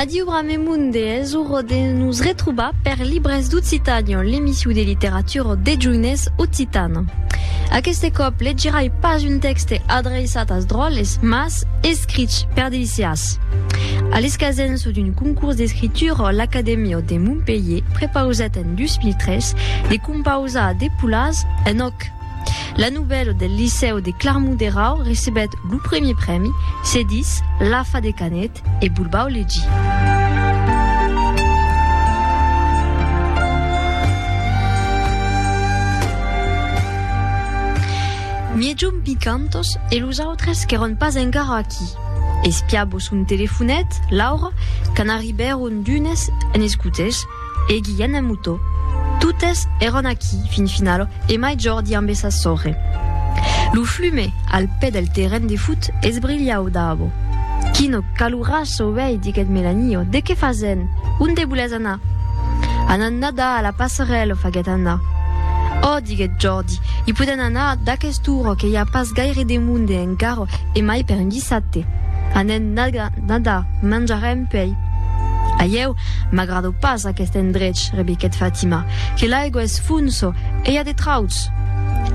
Adiu Bramemun de hèsor de nos retrobar per Libres d'Occitània, l'emissiu de literatura deth joinés occitan. Aqueste còp legirai pas un tèxte adreiçat as dròlles, mas escrich per deliciàs. A l'escasença d'un concurs d'escritura, l'Acadèmia de Montpelhier prepausèt en 2003 de compausar de polàs en òc. La novèla del Licèu de Clarmont-Derau recebèt lo primièr prèmi, se ditz L'afa de Canet e vos vau legir. Mièjum picantos e los autres qu'èron pas encara aquí. Espiabo son telefonet, Laura, quand arribèron d'unes en escotèls, E Guilhen en Motó. Totes èran aquí, fin final, e mai Jordi ambe sa sòrre. Lo flume, al pè del terren de fut, esbrilhau dabo. Quino calurasso, uèi, diguèt Melanio, de qué fasen? Onde volètz anar? Anam nadar a la passerèla, faguèt Anna. Ò, diguèt Jordi, i podèn anar d'aquesta ora que i a pas gaire de monde encara e mai per un dissabte. Anem Nada, manjarem pei. A ieu m'agrado pas aquest endrech, rebiquèt Fatima, que l'aigua es fonso e i a de trauts.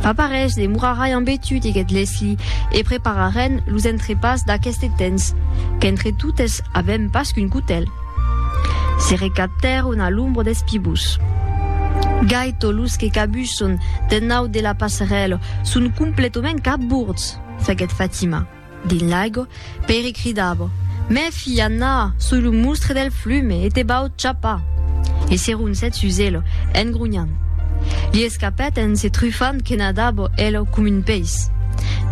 Fa pas res, demorarai ambe tu, diguèt Leslie, e prepararem los entrepàs d'aqueste temps, qu'entre totes avèm pas qu'un cotèl. Se recaptèron a l'ombra des pibús. Gai tots los que cabusson d'ennaut de la passerèla son completament cabords, faguèt Fatima. Dins l'aigo, Pere cridavo, Mèfi, Anna, soi lo mustre del flume e te vau chapar! E se roncèt sus elo, en gronhant. Li escapèt en se trufant que nadavo elo com un peis.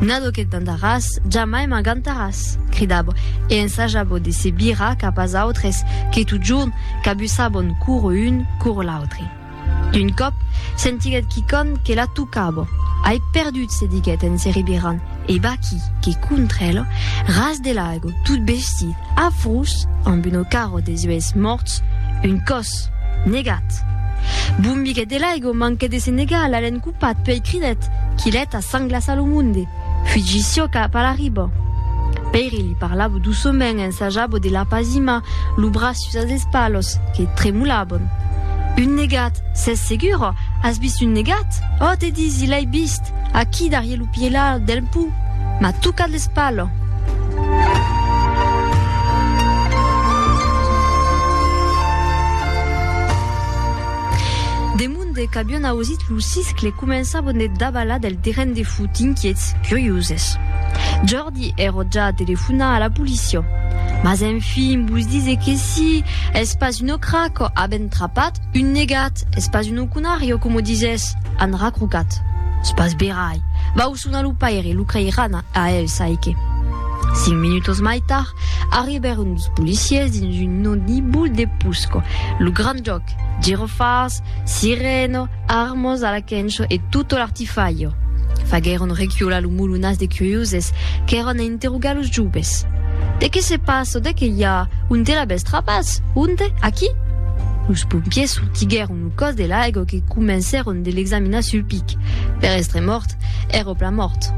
Nado que t'andaràs, jamai m'agantaràs! cridavo e ensajavo de se virar cap as autres que totjorn cabussavon coro un, coro l'autre. D'un còp, sentiguèt quicòm que la tocava. Ai perdut, se diguèt en se rebirant, e vaquí que contra ela, ras de l'aigo, tot bestit, afrós, amb una cara de zuèlhs mòrts, un còs! Negat! Bombiguèt de l'aigo, manquèt de se negar, l'alèn copat, puèi cridèt, Quilèt a sang glassa lo monde! Fugi siò cap a la riba! Pèiri li parlava doçament, ensajava de l'apazimar, lo braç Sus dels palos que tremolaban. Un negat, s'es segura? As vist un negat? Oh, te disi, l'ai vist, aquí darrier lo pièla del pò. M'a tocat l'espala. Demunde qu'avion ausit lo siscle, començavan de davalar del terren de fut, inquiets, curioses. Mardi ero ja telefonar a la policia. Mas enfin, vos dise que si, es pas un ocraco, avèn trapat un negat, es pas un ocunario, coma disès, an racrocat. Es pas verai. Vau sonar lo paire, lo creiràn a el çai que. Cinc minutos mai tard, arribèron dos policiers dins un nodibul de Pusco. Lo grand jòc, girofars, sirena, Armos a la quencho e tutto l'artifaio. Faguèron recuolar lo mulunas de curioses qu'èron a interrogar los joves. De qué se passa? De qué i a? Onte l'avètz trapas? Onte? Aquí? Los pompiers sortiguèron lo còs de l'aigo que comencèron de l'examinar sul pic. Per èstre mòrt, èra plan mòrt.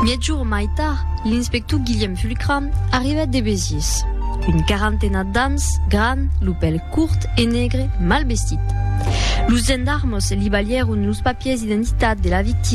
Mièg jorn mai tard, l'inspector Guilhèm Cram arribèt de Besiés. Un quarantena d'ans, gran, lo pèl curt e negre, mal vestit. Los gendarmos li balhèron los papiers d'identitat de la victima.